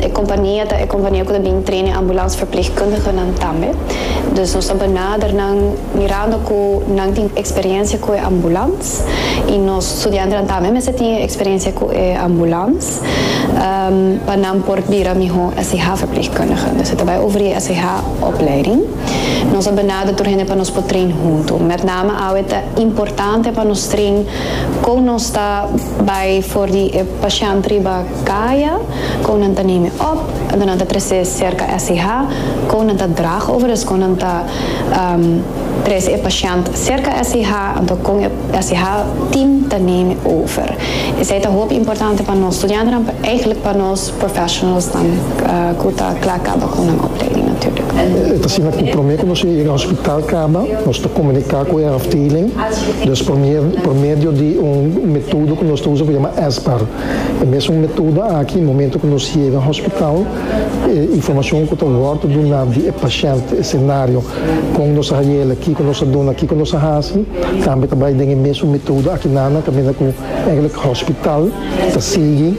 E kompania ta e kompania ku ta bin trena e ambulansverpleegkundigenan tambe. Dus nos ta benader nan mirando ku nan tin eksperensia ku e ambulans i nos studiantenan tambe mester tin e eksperensia ku e ambulans pa nan por bira mihó SIH-verpleegkundige. Dus e ta bai over e SIH-opleiding. Nos a benader tur hende pa nos por train huntu. Mètname awe ta importante pa nos train kon nos ta bai for di e pashènt riba. Kaya, kou nan ta name op, ento nan ta trese serka SCH, kou nan ta drag over es kou nan ta trese e pashènt serka SCH, ento kon e SCH team ta name over. Esei ta hopi importante pa nos studiantenan, eigentlik pa nos professionalsnan ku ta kla kaba ku nan opleiding natuurlijk. E ta asina ku promé ku nos yega hospital kaba, nos ta komuniká ku e afdeling, dus por medio di un metodo ku nos ta usa ku yama SBAR. E mesun metoda aki, momento ku nos yega hospital, e informashon ku ta wòrdu duná di e pashènt, e senario, kon nos a haiela, kiko nos a duna, kiko nos a hasi, tambe ta bai den e mesun metoda aki nana, kaminda ku ègèlèk hospital ta sigui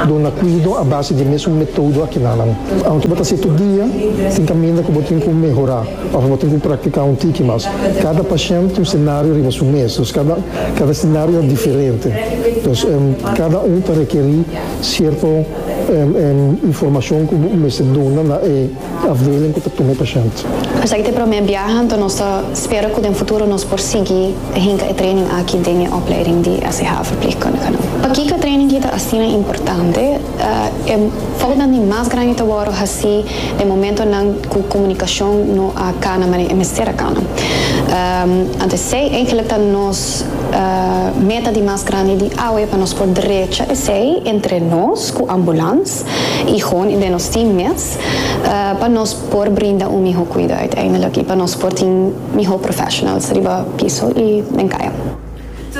duna kuido a base di e mesun metodo aki nanan. Aunke bo ta setu dia, tin kaminda ku bo tin ku mehorá. Ora bo tin ku praktiká un tiki mas. Kada pashènt tin un senario riba su mes, dus kada kada senario ta diferente. Dus kada un ta rekerí sierto informashon ku bo mester duna na e afdeling ku ta tuma e pashènt. Esaki ta e promé biaha, anto nos ta spera ku den futuro nos por sigui ta hinka e training aki den e opleiding di SCH Verpleegkundigen. Pakiko e training aki ta asina importante? E foutnan di mas grandi ta wòrdu hasí den momentonan ku komunikashon no a kana maneira e mester a kana. Anto esei eigenlik ta nos meta di mas grandi di awe pa nos por drecha esei entre nos ku ambulans i hon i den nos team mes pa nos por brinda un mihó kuida uiteindelik i pa nos por tin mihó professionals riba piso i den kaya.